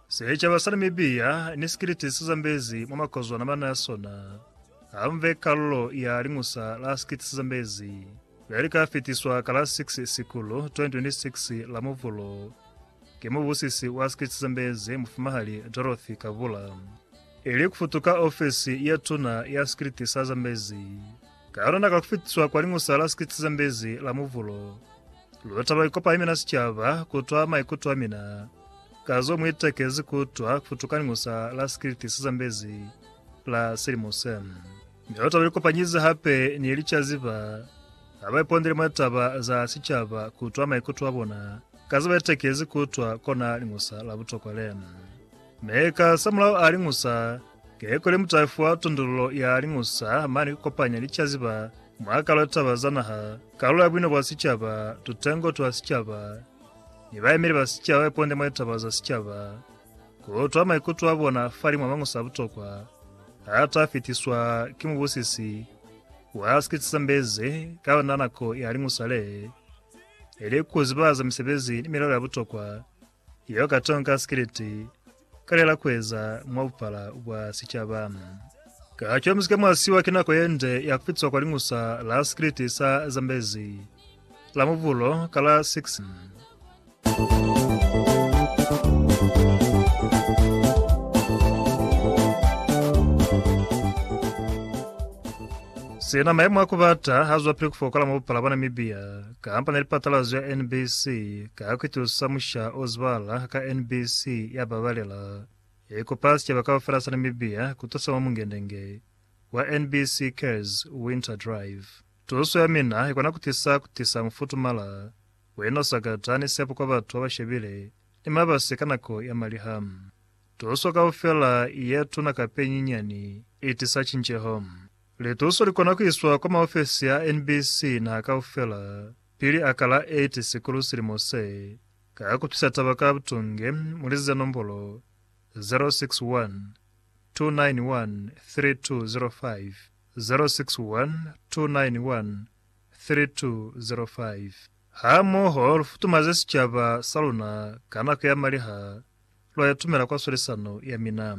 Sicaba sa Namibia ni sikiliti si zambezi mwa makozwana mana a sona ha mve kalulo ya Liñusa la Sikiliti si Zambezi le li ka fitiswa ka la 6 Sikulu 2026 la Muvulo ki mubusisi wa Sikiliti si Zambezi Mufumahali Dorothy Kabula ili ku futuka ofesi ya Tuna ya Sikiliti sa Zambezi. Ka yona na ka fitiswa kwa Liñusa la Sikitsi za Mbezi la Muvulo. Lu taba ikopa imina sicaba kutwa maikuto amina ka zo muitekezi kutwa kufutuka Liñusa la Sikitsi za Mbezi la silimo se. Mi lu taba likopanyize hape ni licaziba ha ba ipondele mwa taba za sicaba kutwa maikuto abona ka za baitekezi kutwa kona Liñusa la butokwa lena. Mi ka samulaho a liñusa keko le mutayifu wa tondolulo ya liñusa mane ku kopanya licaziba mwa kalo ya taba za naha, kalulo ya buino bwa sicaba, tutengo twa sicaba, ni bayemeli ba sicaba ba iponde mwa litaba za sicaba. Ku utwa maikuto a bona fa limwa mañusa a butokwa a ta fitiswa ki mubusisi wa Sikitsisambezi ka lona nako ya liñusa le, ili ku zibahaza misebezi ni milelo ya butokwa Yo ka tonka sikiliti ka lela kueza mwa bupala bwa sicaba. Ka co muzika mwa siwa ki nako yende ya kupitwa kwa lingusa la sikiliti sa Zambezi la mubulo ka la 6. Sina maimo a kubata ha zwapili kufokola mwa bupala bwa Namibia. Kamba ne lipatalazo ya NBC ka kuitusa musha o zibala ka NBC ya babalela, ya ikupa sicaba kaufela sa Namibia kutusa mwa mungendenge wa NBC Cares Winter Drive. Tuso ya mina ikona kutisa kutisa mufutumala, wena usakata, ni sepo kwa batu babashebile ni mabasi ka nako ya maliha. Tuso kaufela yetuna kape nyinyani itisa cinceho. Lituso likona kuiswa kwa maofesi a NBC naha kaufela pili a ka la 8 Sikulu silimo se, ka kupsisa taba ka butunge mulizi za nombolo 0612913205, 0612913205. Hamoho lufutumaze sicaba saluna ka nako ya maliha, lwa itumela kwa swalisano yamina.